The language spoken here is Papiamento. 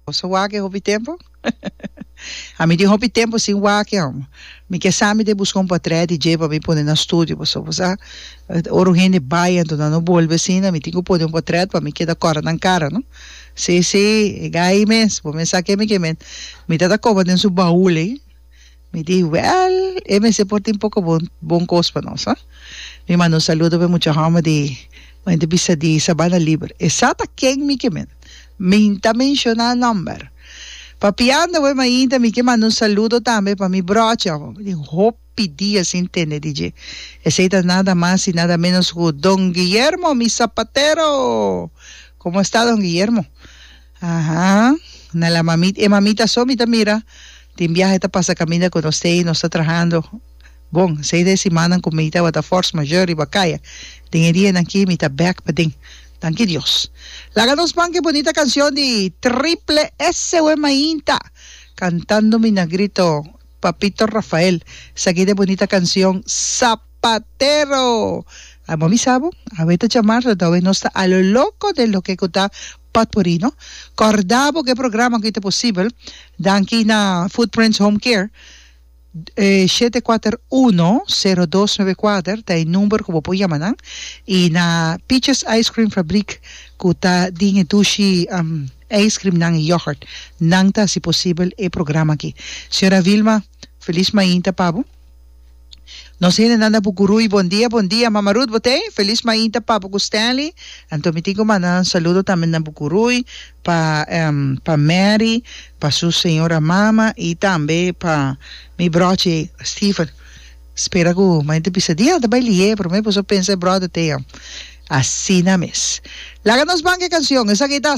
Boso wak e hopi tempo? A mi tin hopi tempo sin wak e amo. Mi ke sa mi te buska un patrè di dje pa mi pone na studio pasobra bo sa ora un hende bai anto nan no bolbe asina mi tin ku pone un patrèt pa mi keda kòrda nan kara no si si e gai mes bo mes sa ke mi ke men mi ta ta koba den su baul ei Mi di, Wèl, e mester por tin poko bon bon kos pa nos, a. Mi manda un saludo pa e mucha hòmber di mente bisa di Sabana Liber. E sa ta ken mi ke men. Mi no ta menshoná nòmber. Papiando awor mainta mi ke manda un saludo tambe pa mi bròchi awor. Mi tin hopi dia sin tende di dje. Esei ta nada mas i nada ménos ku don Guillermo, mi sapatero! Komo a sta don Guillermo? Aha. Na la mamit e mamita so mi ta mira tin biahe ta pasa caminda cu nos t'ey nos ta trahando bon seis de simannan cu mi tabata force majeure riba caya den e dianan ki mi ta bek paden danki Dios laga nos manca e bonita cancion di Triple S we mainta cantando mi na grito Papito Rafael saquida e bonita cancion Zapatero awe mi sa bo awe ta chamar so ta awe nos ta a lo loco den loke cu ta Potpourrino. Corda bo cu e programa aki ta posibel danki na Footprints Home Care. E shete kuater uno, sero dos nove kuater ta e number cu bo por yama nan. Y na Peaches Ice Cream Fabriek cu ta den e dushi ijscreamnan y yoghurt nan ta haci posibel e programa aki. Señora Vilma. Feliz mainta pa bo. Nos hendenan na Bucuruy bon dia bon dia mama Ruth bo tey feliz mainta pa bo cu Stanley anto mi tin cu manda nan saludo tambe na Bucuruy pa pa Mary pa su señora mama y tambe pa mi brochi Steven spera cu mayor di bisa dia ta bay liye pero me puso pensa e brother tey asina mes laga nos ban cu e cancion esaki ta.